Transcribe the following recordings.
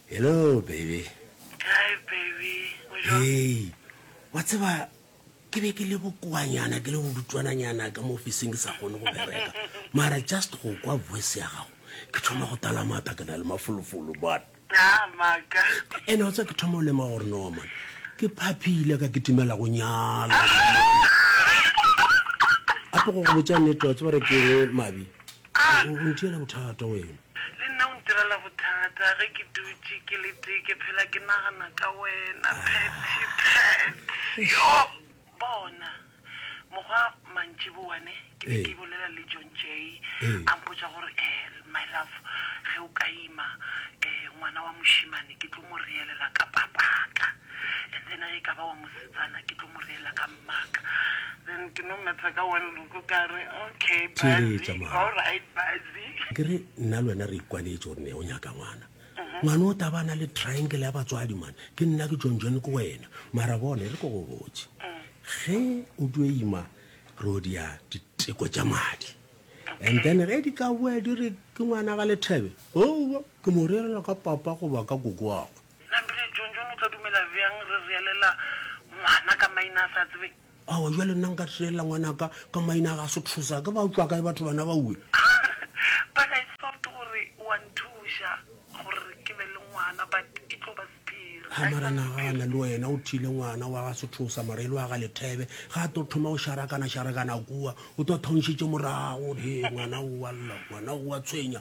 Hello, baby. Hi, baby. Hey, wa tseba ke be ke le bokoanyana ke le bodutswananyana ka mo ofiseng ke sa kgone go bereka mara just go kwa voice ya gago ke thoma go tala mata ke na le mafolofolo bana ene o tsa ke thoma o lema gore no man ke phaphile ka ke timela go nyala ape go go botsa nnete wa tsebare ke mabi A re, O ntirela bothata wena. Le nna o ntirela bothata ge ke dutše ke le tee ke phela ke nagana ka wena, Patty, Pat. Yoh! Bona, mokgwa mantšiboa ne, ke be ke bolela le John Jay, a mpotša gore, Ehl, my love, ge o ka ima, eh, ngwana wa mošemane ke tlo mo reelela ka papaka, and then ge e ka ba wa mosetsana ke tlo mo reelela ka. Theeletša mama. Ke re nna le wena re ikwanetše gore ne o nyaka ngwana. Ngwana o taba na le triangle ya batswadi man. Ke nna ke John John ke wena. Mara bona e re ko go botse. Ge o tlo ima re o dia diteko tša madi. And then ge di ka boa di re ke ngwana ga lethebe. Owa ke mo rerela ka papa goba ka koko wa gwe. Na Billy John John o tla dumela bjang re reelela ngwana ka maina a sa tsebeng? Aowa, bjale nna nka reelela ngwana ka ka maina a ga se thusa. Ke ba utlwa kae batho bana baue? But I thought gore o a nthuša gore ke be le ngwana but e tlo ba sephiri. Ha, mara nagana le wena o thile ngwana wa ga se thusa mara e le wa ga Lethebe. Ga a tlo thoma go šarakana-šarakana kua, o tlo thaunšitše morago gore, Hee, ngwana o wa lla, ngwana o wa tshwenya.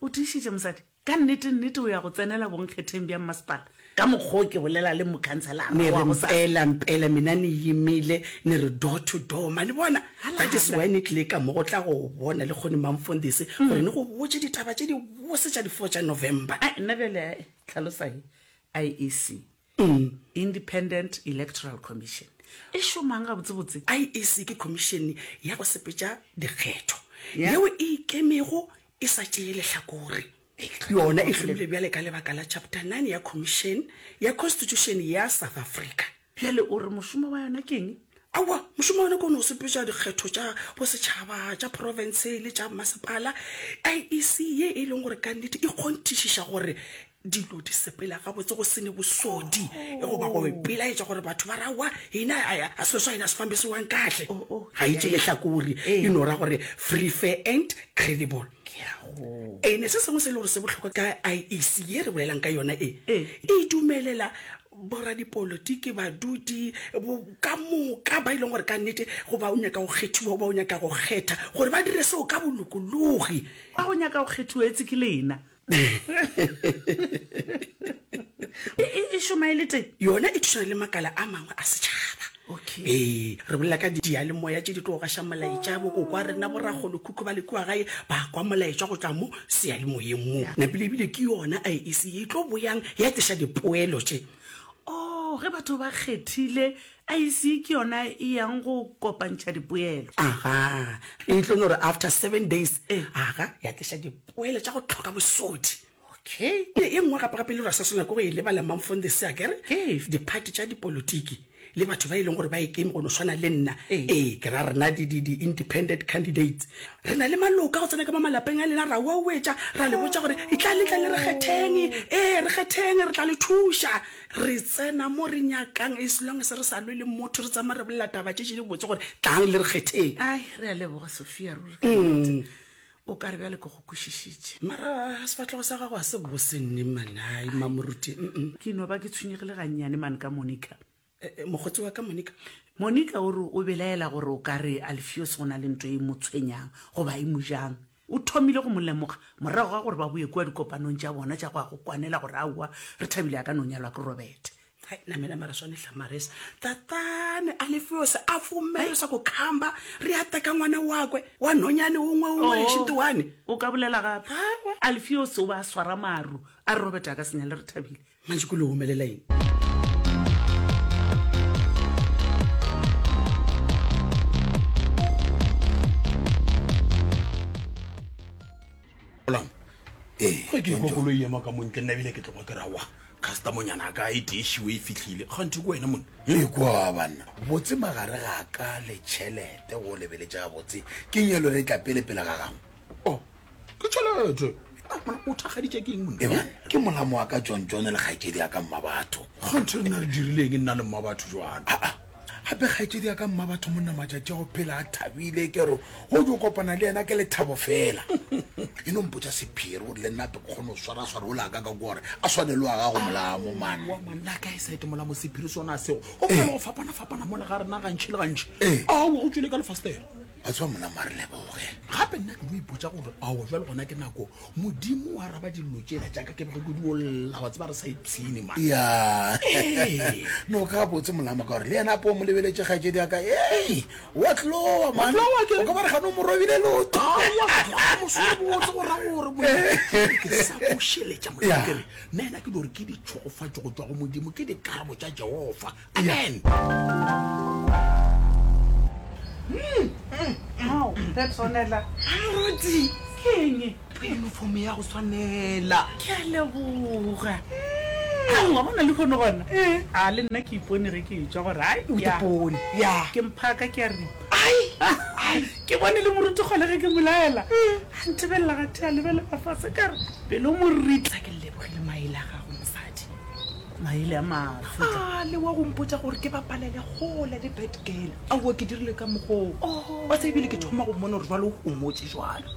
O tiišitše, mosadi. Ka nnete, nnete o ya go tsenela bonkgetheng bja mmasepala, ka mokgwa o ke bolela le mokhanselara Ne wa re gosasa. mpela, mpela, mina ni yimile, ni ri door to door. Ma ni bona? Hala, That is hala. why ni tlile ka mo go tla go bona lekgone Mamfondisi, gore ni go botše ditaba tše dibose tša di four tša November. Ai, nna bjale, ai, tlhalosa, he, IEC. Independent Electoral Commission e šomang gabotsebotse? IEC ke khomišene ya go sepetša dikgetho yeo e ikemego e sa tšee lehlakore. Yona e hlomilwe bjale ka lebaka la Chapter 9 ya Khomišene ya Khonstitušene ya South Africa. Bjale o re mošomo wa yona ke eng? Aowa, mošomo wa yona ke go no sepetša dikgetho tša bosetšhaba, tša profense le tša masepala. IEC ye e leng gore ka nnete e kgonthišiša gore Dilo di sepela gabotse go sene bosodi e go ba go ipelaetša gore batho ba rawa ina a selo sa ina se fambisiwang kahle oh, oh, ga itše lehlakori e no ra gore free fair and credible ene se sengwe se e le gore se bohlokwa ka iec ye re bolelang ka yona e e dumelela boradipolotiki badudi ka moka ba e leng gore ka nnete go ba o nyaka go kgethiwa o ba o nyaka go kgetha gore ba dire seo ka bolokologi ba go nyaka go kgethiwa etse ke lena e šoma e le teng yona e thušana le makala a mangwe a setšhaba ee re bolela ka diyalemoya tše di tlo gaša molaetša bokoko a rena borakgolo khutlo ba lekiwa gae ba kwa molaetša go tšwa mo seyalemoyeng mo napile ebile ke yona a e se e tlo boyang ya tliša dipoelo tše o oh, ge batho ba kgethile IEC ke yona e yang go kopantšha dipoelo. Aga, e tlo no re after seven days, aga, ya tliša dipoelo tša go hloka bosodi. Okay. E e nngwe gape-gape e le gore sa swana ke go e lebala Mamfong the sea, ke re, Ke efe? Diphathi tša dipolotiki le batho ba e leng gore ba ekeme go no swana le nna, ee, ke ra rena di, di, di independent candidates, re na le maloka go tsena ka mo malapeng a lena ra uauetša, ra le botša gore, Itlang le tle le re kgetheng, ee, re kgetheng, re tla le thuša. Re tsena mo re nyakang as long as re sa lwe le motho, re tsamaya re bolela taba tše tše di botse gore tlang le re kgetheng. Ai, re a leboga Sophia ruri ka nnete. O ka re bjale ke go kwešišitše. Mara sefahlego sa gago ga se bose nne man, ai mma Moruti. Mm, mm. Ke no ba ke tshwenyegile gannyane man ka Monica. Eh, eh, mokgotsi wa ka Monica. Monica o re o belaela gore o ka re Alfios go na le nto e mo tshwenyang goba e mo jang. O thomile go mo lemoga morago ga gore ba boe kua dikopanong tša bona tša go ya go kwanela gore aowa, Rethabile a ka no nyalwa ke Robete. Hai, namela mara swane hla Maresa. Tatane Alefeose a fomelesa go khamba, Re ya teka ngwana wakwe wa nonyane o ngwe o ngwe šiti wane. O ka bolela gape. Alefeose o ba a swara maru a re Robete a ka se nyale Rethabile. mantši ko le omelela eng ge ke kwa koloi ema ka montle nna ebile ke tlokwa ke rawa customonyana ka e tešiwe e fitlhile ganthe ko wena mone e kwa banna botse magare ga ka le tšhelete go lebeletša botse ke nyalo re tla pele pele ga gago o oh, ke tšhelete o thakgaditše ke eng monna ke molamo wa ka john john le kgaetšedi ya ka mma batho kganthe nna re dirileng nna le mma batho jwana ah, ah. gape kgaetšedi ya ka mma batho monna matšatši go phela a thabile ke re go jo kopana le yena ke lethabo fela e no mpotsa sephiri gore le nnape ke kgone go swara swara o laka ka gore a swane le wa gago molamo manna ka e sete molamo sephiri sona seo go fela go fapana fapana mo le ga rena gantšhi le gantšhi eh. a o go tswile ka lefastere wa tseba mona ma re leboge gape nna ke no ipotsa gore ao jwa le gona ke nako modimo wa raba dillo tsela jaaka ke bege kodi olla wa tseba re sa ipshine ma ya no ka botse molama ka gore le yena apo mo lebeletse gaje di aka e wa tlowa man o ka ba re gano mo robile loto mosebotse go ra gore mo ke sa go sheletsa mo ke re nna yena ke dore ke ditshogofatso go tswa go modimo ke dikarabo tsa jehova Amen. Ao, re tshwanela. Moruti. Ke eng? Uniform ya go tshwanela. Ke a leboga. Ga wa bona le kgone gona. A le nna ke ipone ge ke etswa gore ai o ipone. Ya. Ke mphaka ke a ripa. Ai. Ai, ke bone le moruti gole ge ke molaela. A nthebelela ga thea lebelela fase ka re pelo moritla ke lebogile maele a gago mosadi. maele a mafutla a le wa go mpotsa gore ke bapalele kgole le bad girl aowa ke dirile ka mogoo wa sa ebile ke thoma go mmona gore jalo o gomotse jalo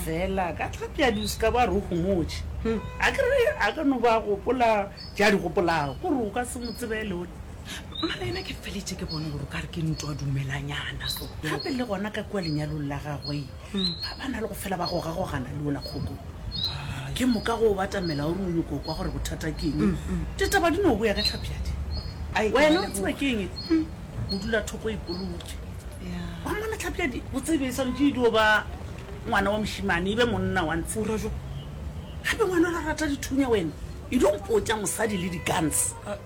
fela ka tlhapja duska ba re o gomotse hmm. a kere a ka no ba gopola ja di gopolago gore o ka se mo tsebele one mara ena ke feletse ke bone gore o ka re ke ntwa dumelanyana so gape le gona ka kua lenyalong la gagwe ba ba na le go fela ba gogagogana le ola kgoko ke moka go o batamela o re o nyoko kwa gore bothata ke eng ditaba di no boya ge tlhapjadi wena o tseba ke eng o dula thoko ipolotse wa mmona tlhapjadi o tsebe e santse e dio ba ngwana wa mošimane e be monna wa ntshe ura jo gape ngwana ra rata dithunya wena e dio mpotsa mosadi le di-guns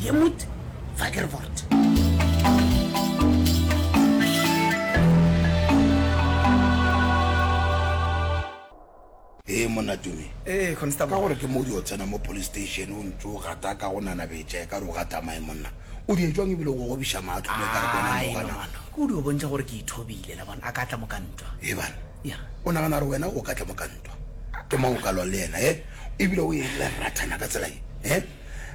ye mut vagervort ee monna tumi ee constable ka gore ke mo di o tsena mo police station o ntse o gata ka go nana betša e ka re o gata mae monna o di etswang ebile go gobiša maatlo mo e ka re kona mo gana o di o bontša gore ke ithobile la bona a ka tla mo ka ntwa e bana ya o nagana gore wena o ka tla mo ka ntwa ke mo o ka lwa le yena e ebile o e le rathana ka tsela e e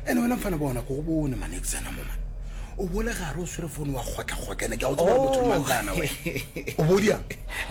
ene wena mfana bona ko go bone mane tsena mo mane o bole gare o swere fone wa kgotlakgotla ene ke a go tsebaa motho mang kana we o bodia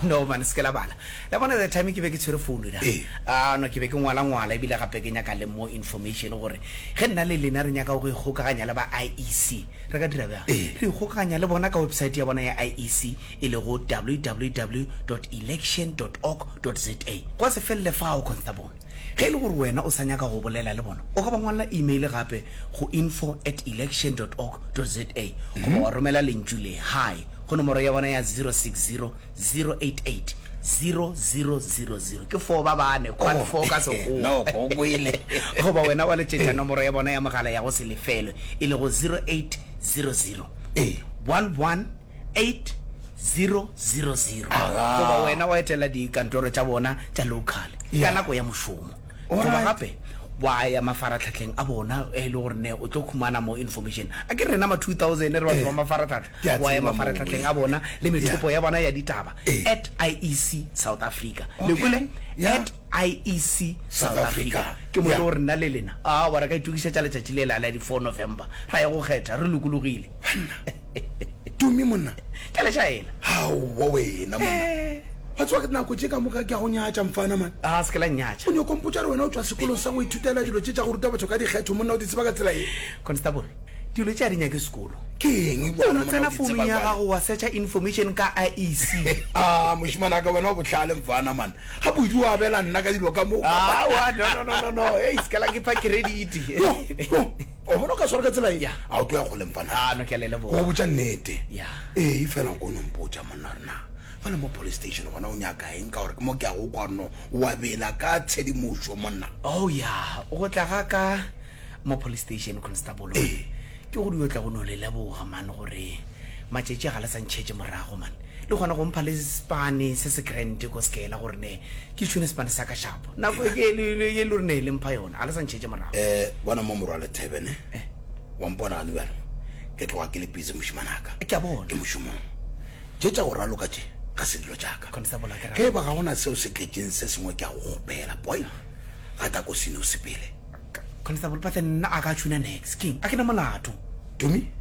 no mane se ke la bala la bona the time ke be ke tshwere fone na Ee. Ah, no ke be ke ngwala ngwala ebile gape ke nyaka le more information gore ge nna le lena re nyaka go ikgokaganya le ba iec re ka dira bjang Ee. re ikgokaganya le bona ka website ya bona ya iec e lego www election org za gwa se felele fao constable Ge e le gore wena o sa nyaka go bolela le bona, o ka ba ngwalla imeile gape go info at election dot org dot za goba wa romela lentšu le Hi go nomoro ya bona ya 060 088 0000. Ke foo ba bane, quad four ka Sekgowa. Noko o kwele. Goba wena wa letšetša nomoro ya bona ya mogala ya go se lefelwe, e lego 0800 11 11. 8000 goba wena wa etela dikantoro tša bona tša local ka nako ya mošomo goba gape wa ya mafaratlhatlheng a bona e le gore ne o tlo khumana mo information a ke rena ma 2000 re batho ba mafaratlhatlha wa ya mafaratlhatlheng a bona le methopo ya bona ya ditaba at iec south africa le kole at iec south africa ke mo e le gore nna le lena a wa re ka itokisetša letšatši le la la di 4 november ra ya go kgetha re lokologile tumi monna ke le jaela gaowa wena monna eh. wa tsewa ke nako tse ka moka ke ya go nyatša mfana man a ah, se ke la nyatša o ne o kompotsa re wena o tswa sekolong sa go ithutela dilo tse tsa go ruta batho ka dikgetho monna o di tseba ka tsela e constable dilo tse a di nyake sekolo ke eng o tsena founung ya gago wa searcha information ka iec a ah, moshimana ka wena o botlhale mfana man ga bodu o abela nna ka dilo ka moo ah, no no no no no e isekela ke pha credit O bona o ka swara ka tsela ye? A o tlo ya kgole mpana? A no ke a le leboga. Go botša nnete? Ya. Ee, fela o kono mpotša monna gore na fa le mo police station gona o nyaka eng ka gore ke mo ke a go kwa no wa bela ka tshedimošo monna. Oh ya, go tla ga ka mo police station constable Ee. ke go dio tla go no le leboga man gore matšatši ga le sa ntšhetše morago man. Le kgona go mpha le sepane se se grand ko sekela gore ne ke tšhune sepane sa ka shapo nako e ke le le ye le re ne le mpha yona a le sa ntšhetše morago. Eh bona mo morwa le Theben eh wa mpona gane bjalo ke tloga ke le busy mošimanaka ke a bona ke mošomong tše tša go raloka tše ga se dilo tša ka Constable a ke ge ba ga gona seo se tletšeng se sengwe ke a go kgopela boy ga ta ko seno sepele Constable Pathe nna a ka tšhuna nex king a ke na molato. Tommy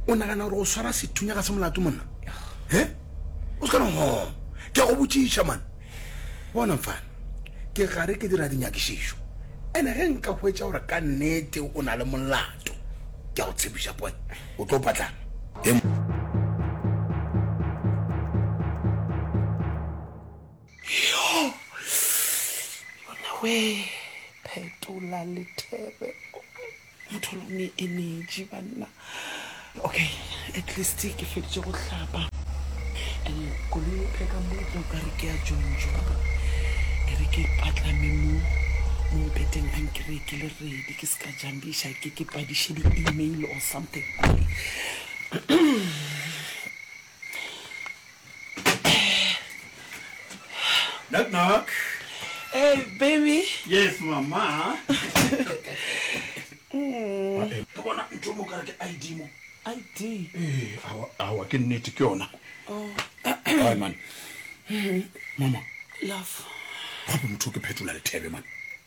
o nagana gore go swara sethunya ga se molato monna he o se kana go ke go botšiša man bona mfana ke gare ke dira dinyakišišo ene ge nka hwetša gore ka nnete o na le molato ke go tshepiša boy o tlo patlana he Yonawee phetola lethebe motho lo ne energy banna okay at least ke feditse go hlapa and koloi e pheka motlo ka re ke ya jonjona e re ke patlame mo mo mpeteng a nkiree ke le redi ke se ka jambiša ke ke padiše di-email or something Knock knock. Hey baby. Yes mama. Mm. Ke bona ntho mo kare ke ID mo. ID. Eh, awa awa ke nnete ke yona. Oh. Ai man. Mama. Love. Gape motho ke phetola lethebe man.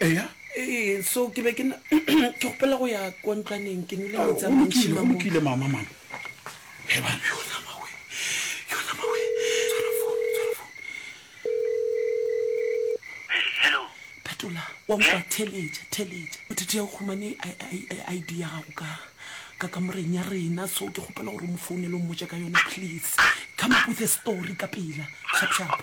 Eya. Ee, so ke be ke na ke gopela go ya kwa ntlwaneng ke nole metsi a Go mantši lokile, go mamo. lokile mama mama. He bana. Yona mawe. Yona mawe. Tshwara phone, tshwara phone. Hello. phetola wa nkwa theletša theletša bothete ya o kgomane I- I- I- id ya gago ka ka kamoreng ya rena so ke kgopela gore o mo founele o mmotse ka yona please come up with a story ka pela sharp sharp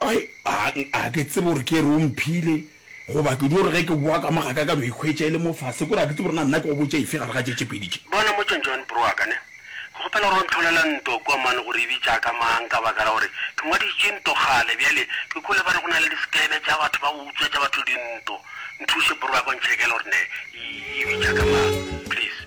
Ai, a, a ke tsebe gore ke re o mphile, goba ke di gore ge ke boa ka mo ga ka ka no ikhwetša e le mo fase, kore a ke tsebe gore na nna ke go botša efe gare ga tše tše pedi tše. Bona mo John, John, bro wa ka, ne, ke kgopela gore o ntlholela nto kua mane gore e bitša ka mang, ka baka la gore ke ngwaditše nto kgale. Bjale ke kwele ba re go na le diskene tša batho ba go utswetša batho dinto. Nthuše, bro wa ka, o ntšhekele gore ne e, e bitša ka mang, please.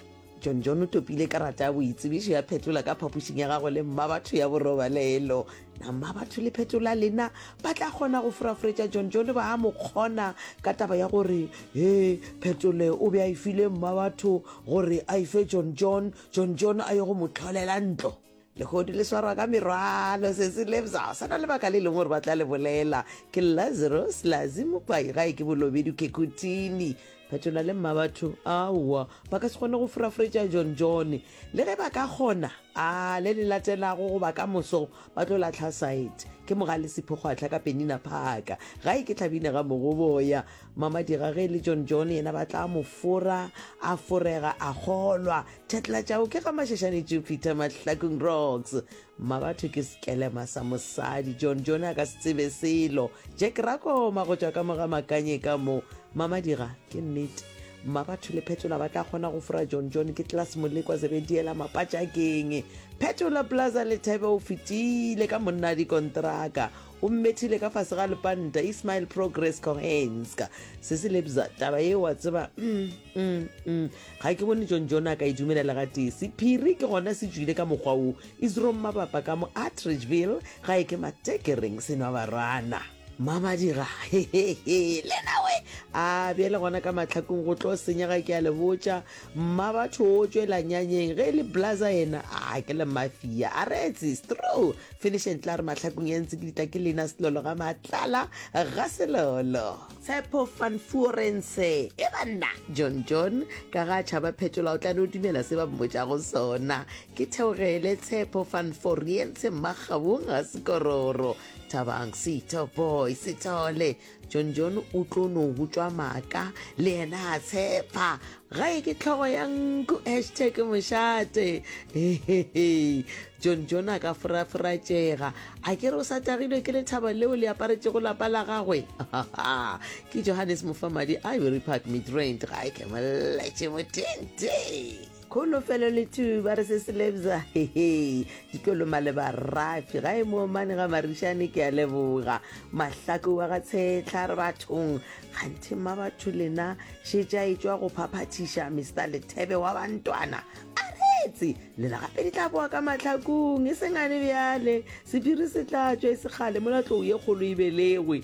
John John o topile karata ya boitsebišo ya phetola ka phapošing ya gagwe le mmabatho ya borobalelo. Na mmabatho le phetola lena ba tla kgona go foraforetša John John ba a mo kgona ka taba ya gore he phetole o be a e file mmabatho gore a e fe John John, John John a ye go mo tlholela ntlo? lehodu le swarwa ka merwalo sese lebza sa na lebaka le leng gore ba tla le bolela ke lazarus lazi mokwai gae ke bolobedu kekutini phetola le mma batho aowa ba ka se kgone go furafuretša john john le ge ba ka kgona a le le latelago goba ka moso ba tlo latlha site ke mogale sephokgwatlha ka penina phaka gae ke tlhabine ga mogoboya Mama Dirage le John John yena ba tla mo fora, a forega a kgolwa. Thetla tšao ke ga Mashashane Jupiter Mahlakong Rocks. Mma batho ke sekelema sa mosadi, John John a ka se tsebe selo. Jack Rakoma go tšwa ka moga Makanye ka mo. Mama Dira, ke nnete. Mma batho le Phetola ba tla kgona go fora John John ke Tlas Molekwa Zebediela Mapatšakeng. Phetola Plaza Lethebe o fetile ka monna dikontraka. O mmethile ka fase ga lepanta, Ismail Progress Kohenska. Sesi Lebza, taba ye wa tseba, mm, mm, mm. Ga ke bone John John a ka e dumelela ga tee. Sephiri ke gona se tšwile ka mokgwa wo. Isro Mmabapa ka mo Atteridgeville, ga e ke Matekereng se nwa barwana. Mmamadira, hehehe, le nawe? A bjale gona ka mahlakong go tlo senyega ke a le botša. Mmabatho o tšwela nyanyeng ge e le blaza yena a ke le mafia a retse stro finish and tla re mahlakong ya ntse ke ditla ke lena selolo ga matlala ga selolo tshepo fan fuorense e banna john john ka ga tšhaba phetola o tla no dumela se ba mmotša go sona ke theogele tshepo fan foriense mmagabong ga sekororo thabang sito boy sithole John John o tlo no butšwa maaka le yena a tshepa gae ke tlhogo ya nku hashtag mošate John John a ka foraforatšega a ke re o sa tagilwe ke lethaba leo le aparetšego lapa la gagwe ke Johannes Mofamadi Ivory Park Midrand ga e ke molletše motente Kholofelo le two ba re se se lebza hehe ditloloma le barafi ga e moomane ga marišane ke a leboga mahlako wa ga tshetlha re bathong kganthe mma batho lena šetša e tšwa go phaphathiša mr lethebe wa bantwana a retse lela gape di tla boa ka mahlakong e sengane bjale sephiri se tla tšwa e segale mola tlou ye kgolo e belegwe